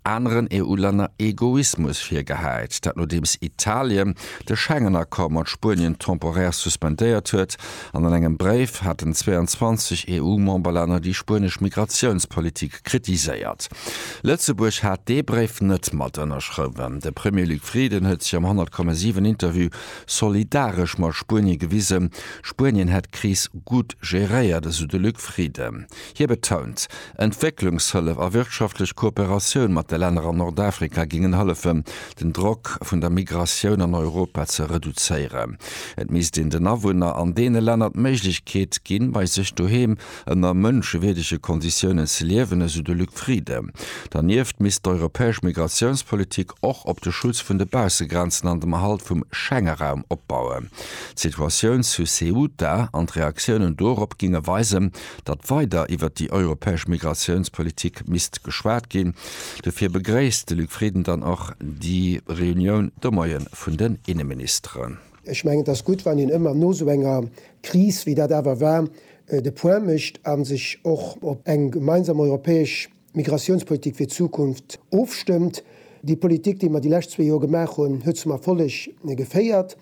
aneren EU-Länner Egoismus virgehäit, dat nodeems Italien de Schengen-Accord mat Spuenien temporär suspendéiert huet, an an engem Bréif haten 22 EU-Memberlänner déi spuenesch Migratiounspolitik kritiséiert. Lëtzebuerg hat dee Bréif net mat ënnerschrëwen. De Premier Luc Frieden huet sech am 100,7 Interview solidaresch mat Spuenie gewisen. Spuenien hätt d'Kris gutt geréiert, esou de Luc Frieden. Hie betount, Entwécklungshëllef a wirtschaftlech Kooperatioun mat de Länner an Nordafrika géingen hëllefen, den Drock vun der Migratioun an Europa ze reduzéieren. Et misst een den Awunner an deene Länner d'Méiglechkeet ginn, bei sech doheem ënner mënschewierdege Konditiounen ze liewen, esou de Luc Frieden. Dernieft misst d'europäesch Migratiounspolitik och op de Schutz vun de Baussegrenzen an dem Erhalt vum Schengeraum opbauen. D'Situatioun zu Ceuta an d'Reaktiounen dorop géinge weisen, datt weider iwwert déi europäesch Migratiounspolitik misst geschwat ginn. Dofir begréisst de Luc Frieden dann och déi Reunioun de Moie vun den Inneministeren. Ech mengen, et ass gutt, wann een ëmmer no esou enger Kris, wéi dat awer war, de Point mécht a sech och op eng gemeinsam europäesch Migratiounspolitik fir d'Zukunft ofstëmmt. Déi Politik, déi mer déi lescht zwee Joer gemaach hunn, huet zum Erfolleg geféiert.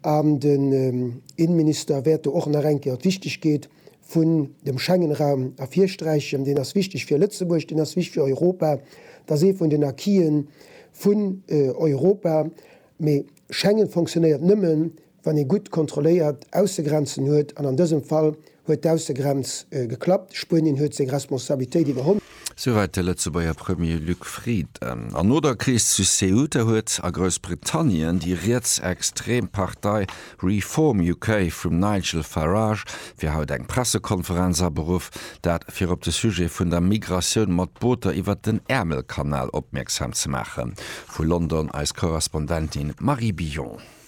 An den Innenminister wäert do och nach eng Kéier d'Wichtegkeet vun dem Schengen-Raum ervirsträichen. Deen ass wichteg fir Lëtzebuerg, deen ass wichteg fir Europa. Et ass ee vun den Acquisen vun Europa. Mee Schengen funktionéiert nëmmen, Wann ee gutt kontrolléiert Aussegrenzen huet, an an dësem Fall huet d'Aussegrenz geklappt, Spuenien huet seng Responsabilitéit iwwerholl. Souwäit de Lëtzebuerger Premier Luc Frieden. An no der Kris zu Ceuta huet a Groussbritannien déi rietsextrem Partei Reform UK vum Nigel Farage fir haut eng Pressekonferenz aberuff, dat fir op de Sujet vun der Migratioun mat Booter iwwert den Äermelkanal opmierksam ze maachen. Vu London eis Korrespondentin Marie Billon.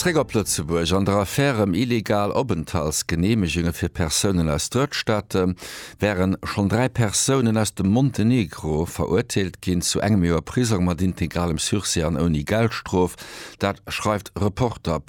Zréck op Lëtzebuerg an der Affär ëm illegal Openthaltsgeneemegunge fir Persounen aus Drëttstaate wären schonn dräi Persounen aus dem Montenegro verurteelt ginn zu engem Joer Prisong mat integralem Sursis an ouni Geldstrof. Dat schreift Reporter.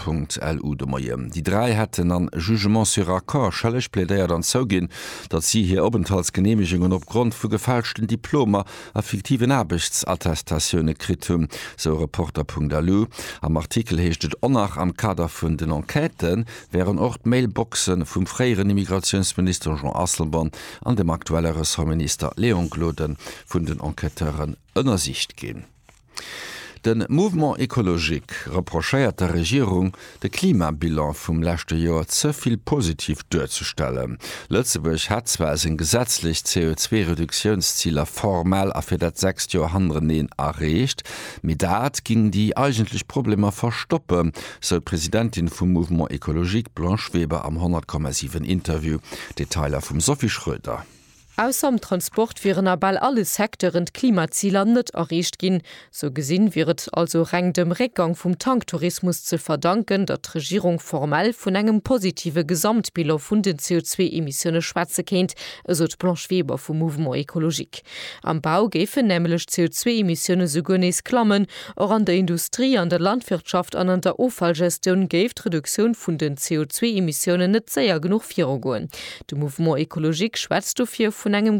Lu de Moien. Déi dräi hätten am Jugement sur accord schëlleg plädéiert an zouginn, datt si hir Openthaltsgeneemegungen opgrond vu gefälschten Diplomer a fiktiven Aarbechtsattestatiounen kritt hunn, sou Reporter.lu. Am Artikel heescht et ohnach, am Kader vun den Enquête wären och d'Mailboxe vum fréieren Immigratiounsminister Jean Asselborn an dem aktuelle Ressortminister Léon Gloden vun den Enquêteuren ënnersicht ginn. De Mouvement écologique reprochéiert der Regierung, de Klimabilan vum leschte Joer ze vill positiv duerzestellen. Lëtzebuerg hätt zwar seng gesetzlech CO2-Reduktiounsziler formal a fir dat sechst Joer hannereneen erreecht, mee dat géing déi eigentlech Problemer verstoppen, sou d'Presidentin vum Mouvement écologique, d'Blanche Weber am 100,7 Interview. Detailer vum Sophie Schroeder. Ausser am Transport wieren a bal alle Secteuren d'Klimaziler net erreecht ginn. Sou gesinn wier et also reng dem Réckgang vum Tanktourismus ze verdanken, datt d'Regierung formell vun engem positive Gesamtbilan vun den CO2-Emissioune schwätze kéint, esou d'Blanche Weber vum Mouvement écologique. Am Bau géifen nämlech d'CO2-Emissioune souguer nees klammen, Och an der Industrie, an der Landwirtschaft an an der Offallgestioun géif d'Reduktioun vun den CO2-Emissiounen net séier genuch virugoen. De Mouvement écologique schwätzt dofir vun engem.